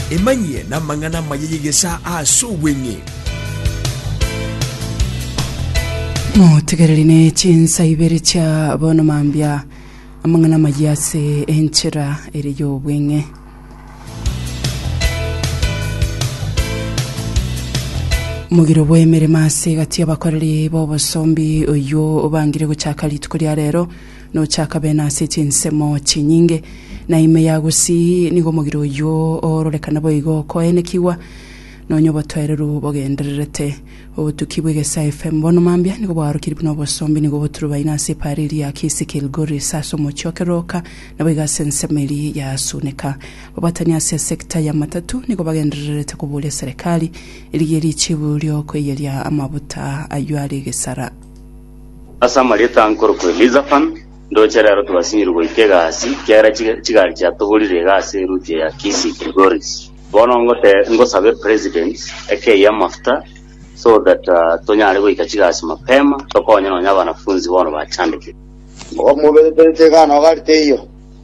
Emanyie namang'ana amaya y'egesaa aase obweng'e. Motegereri ne chinsa ibere chia bono mambia amang'ana amaya ase enchera ere y'obweng'e. Omogiro bw'emeremo ase egati y'abakoreri b'obosombi oyio obangire gochaka rituko ria rero Nochakabe nase chinsemo chinyinge, na ime ya gusii nigo omogire oyio oororekana boigo okoenekigwa, nonya obotoereru bogendererete. Obotuki bw'egesae FM bono mambia nigo bwaorokirie buna obosombi nigo boturubaine ase epaara eria ya Kisii Kilgoris ase omochie o Keroka, naboigo ase ensemo eria ya Suneka. Babatani ase esecta ya matatu nigo bagendererete koboria serikali erigie richibu riokoiyeria amabuta ayio are egesara. Ase amarieta ankorokwa Elizafan, ndoche rero twasinyiru goika egasi, kiagera chiga- chigari chiatoborire iga ase eruti eya Kisi Gregoris. Bono ngote ngosabe president ekei amafuta so that ah, tonyare goika chigasi mapema tokonye nonya abanafunzi bono bachandekire. Omogomo obeteterete iga na ogari teiyo.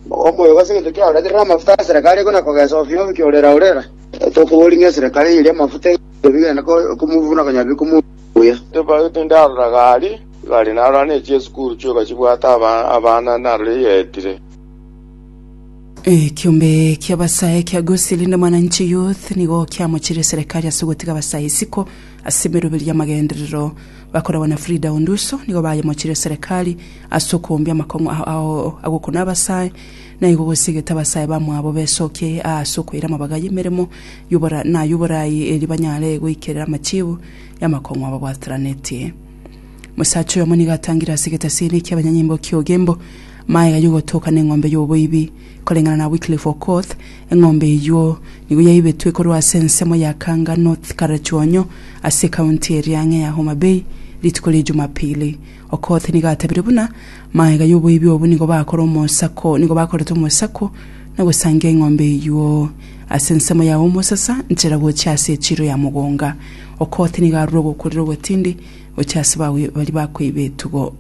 Omogomo oyo gose egento kiaoreterire amafuta ase eserekari ekona kogesa ofio ofio kiorera orera. Tokoboria ng'a eserekari eye eri amafuta ebi genda ko- komobuna konya bi komu buya. Tobagete inde arora gari igari narora ne chiesukuru chioka chibwate abana narora eyetire. Ekiombe kia basae kia Gusii rinde Mwananchi Youth nigo kiamochirie serekari ase gotiga basae isiko ase emeruberio y'amagenderero. Bakoragwa na Frida Onduso nigo bayemochirie serekari ase okoombia amakong'u ao agokuna abasae, naigo gosiegete abasae bamwabo besokie aa ase okoira amabaga y'emeremo yobora na yoborai erio banyare goikerera amachiibu y'amakong'u ababwateranetie. Omosacha oyomo nigo atangire ase egetasini ekia abanyanyimbo kia Ogembo maega y'ogotoka neng'ombe y'oboibi. Koreng'ana na Wycliffe Okoth, eng'ombe eyuo nigo yaibetwe korwa ase ensemo ya Kanga North Karachuonyo ase ekaunti eria ang'e ya Homa Bay rituko ria Jumapili. Okoth nigo atebirie buna, Maega y'oboibi obo nigo bakore omosako, nigo bakorete omosako na gosangia eng'ombe eyio. Ase ensemo yao omosasa nchera gochia ase echiro ya mogonga. Okoth nigo arure ogokurera ogotindi gochia ase bawi- baria bakoiba etugo.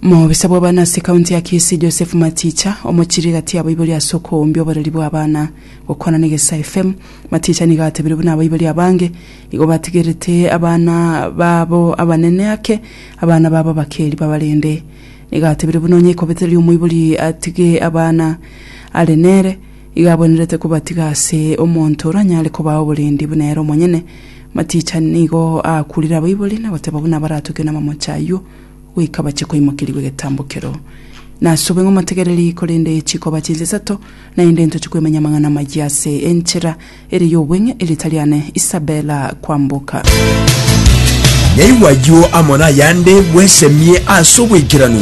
Omobisa bw'abana ase ekaunti ya Kisii Joseph Maticha omochirie gati y'abaibori ase okoumbia oboreri bw'abana. Gokwana na Egesae FM, Maticha nigo atebirie buna abaibori abange Igo batigerete abana babo abanene ake, abana babo abakeeri babarende. Nigo atebire buna onye ekobete riria omoibori atige abana are nere, igo abwenerete kobatiga ase omonto oranyare kobaa oborendi buna ere omonyene. Maticha nigo aakurire abaibori na goteba buna baratoke namamoche ayio goika bache koimokerigwa egetambo keroo. Nasobe ng'omotegereri, korende chikoba chinsa isato naende ntoche kwemenya amang'ana amayia ase enchera, Ere y'obweng'e erieta riane Isabella Kwamboka. Naigwa ayio amo nayande bwesemie ase obwaikeranu.